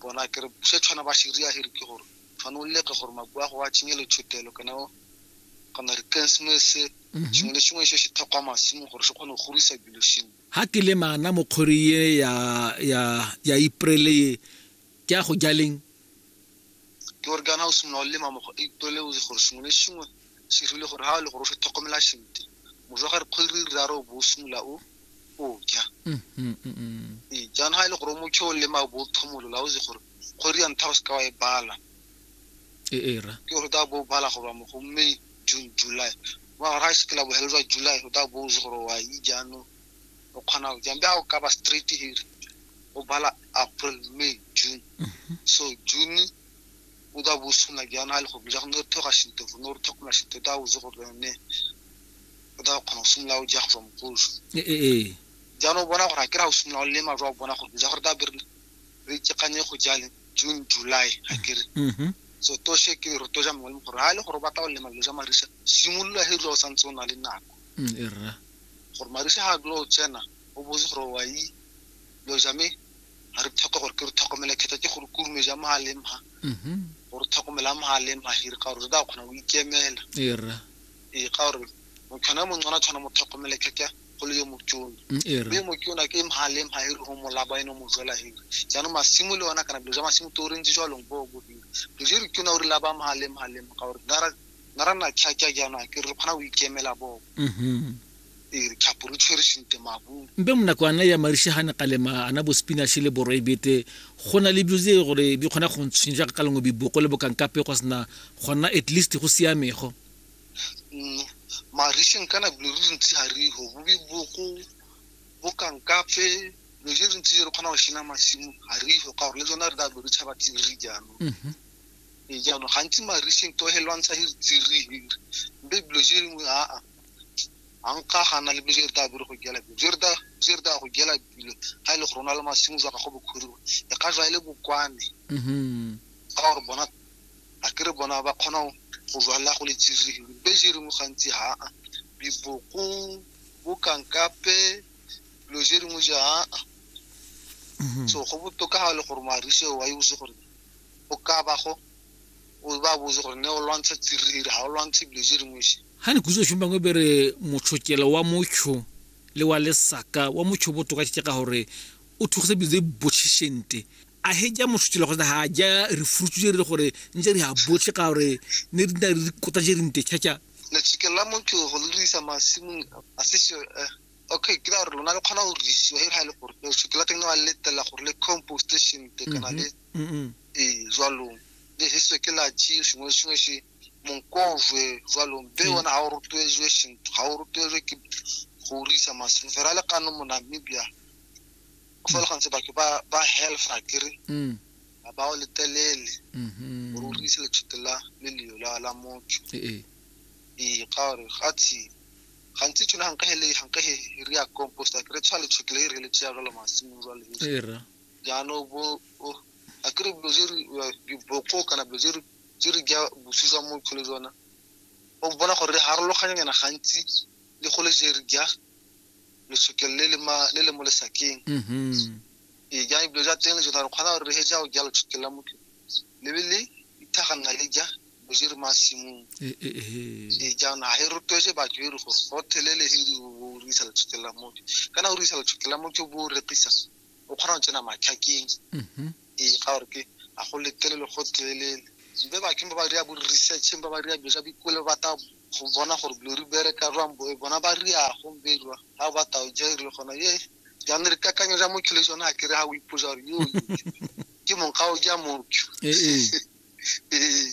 bona kere se tshwana ba se ria here ke gore fane o leke gore makua go a tšenye letshotelo kana kana re christmase mhm. sengwe le sengwe se se tlhokwa masimo gore se kgone go gorisa dilo sengwe ha ke le mana mo khori ye ya ya ya iprele ke a go jaleng ke gore kana o simolola o lema mo go ipoleletse gore sengwe le sengwe se rile gore ha o le gore o se tlhokomela sentle mojo ga re kgwedi re raro o bo o simolola o o ja mm, mm, mm, ee jaanong ga e le gore o motlho o lema o bo o thomolola o se gore kgwedi ya ntlha o se ka wa e bala e era ke gore o tla bo o bala goba mo go may june july mo gare ga e se ke la bohelo jwa july o tla bo o se gore wa e jaanong o kgona go jang jago ka ba straight here o bala april may june mhm. so june o da bo suna jang ha le go bila go ne thoga shito go ne re thoga na shito da o zo go ne o da kgona go simolola o ja go tswa mokoso ee eh, eh, eh. jaanong o bona gore a kry-a o simolola o lema jwa bona gore ja gore da be re itsekanye go jale june july ga kere mm-hmm. so toshe ke re toja mongwe le gore ga e le gore o batla go lema dilo ja marisa simolola he dilo o santse o na le nako mm, gore marisa ga a dula o tsena o botse gore wa yi lo jame ga re tlhoka gore ke re tlhokomele kgetha ke gore kurume ja mo a leng ha mhm. gore tlhokomela mo a leng ha hire ka gore re tla kgona go ikemela ee ka gore motshwana mo ngwana tshwana mo tlhokomele khetha go le yo motšona mm, mme motšona ke mo a leng ha hire go molaba eno mo jwela hire jaanong masimo le ona kana dilo ja masimo to re ntse jwalong bo bo hire re je re tšona o re laba mo a leng ha leng ka gore nna ra nna tlhaja jaanong a ke re kgona go ikemela boko mm-hmm. ee re tlhapo re tshwere sente mabung mpe mo nako ana ya marishe ga ne kalema ana bo spinashe le boroi bete go na le bilo tse gore di kgona go ntshwenya jaaka ka lengwe biboko le bokankape go sena gona at least go siamego mm, marisheng kana bilo re ntse ga re go bo biboko bokankape lo je re ntse re kgona go shena masimo ga re go ka gore le tsona re ka lo re tshaba tse re jaanong mm-hmm. ee jaanong gantsi mariseng to he lwantsha hiri tsiri hiri mbe bilo je lengwe aa a nka gana le bilo je re ta bere go gela bilo je re ta je re ta go gela bilo ga e le go rona le masimo jwa gago bokhuriwa e ka jwa e le bokwane ga mm-hmm. gore bona a ke re bona ba kgona go jwalela go le tsiri hiri mbe je lengwe gantsi aa biboko bokankape bilo je lengwe je aa mm-hmm. so go botoka ga e le gore marise wa e bose gore o ka bago o ba botse gore ne o lwantsha tsiriri ga o lwantshe dilo tse dingwe se ga ne kutso tshong bangwe bere motshokelo wa motsho le wa lesaka wa motsho botoka ke ka gore o thugisa dilo tse botšhešente a he ja motshokelo kgotsa ga ja re furutse je re le gore ntse re a botlhe ka gore ne re nna re kota je re nte tšhatša letshokelo la motsho go le dirisa masimong a se eh, okay ke ra gore lona le kgona go risiwa e ga le gore no shutla teng wa letela gore le compost station te kana le mm -hmm. e jwalo le hiso ke la chi shingwe shingwe shi monkozwe jwalo be mm. wona ha o rutwezwe shinto ha o rutwezwe ke go risa masini fela le kano mo Namibia o fa le mm. gantse batho ba ba health akere mm ba o letelele mm-hmm. o risa le tshutela le leo la la motho e e e ka re ga tshile gantsi tshone ga nka hele ga nka he re ya compost a kere tshwa letshekele e re le tsaya jalo masimong jwa le era jaanong bo o- a kere dilo tse re uh, diboko kana dilo tse re tse re ja bosi jwa mo tlhole jona o bona gore re harologanyana gantsi le go le je re ja letshekele le le ma- le le mo lesakeng mhm Ee, jaanong dilo tsa teng le tsone gore kgona gore re heja go jalo tshokela motho lebe le ithagana le ja boje re masimong ee eh, eh, eh. ee jaanong ga e rotloetse batho e re gore go thelele he di o rekisa le tshokela motho kana o rekisa le tshokela motho bo o rekisa o kgona go tsena matlhakeng mhm. ee ga gore ke a go letelele go thelelele mbe baking ba ba dira bo researcheng ba ba dira dilo tsa bikole ba ta go bona gore dilo re bereka jwang boe bona ba ria go bedwa ga ba tao jaire gona ye jaanong re kakanyo ja motho le sone a kere ga o iposa gore yo ke mong ga o ja motho ee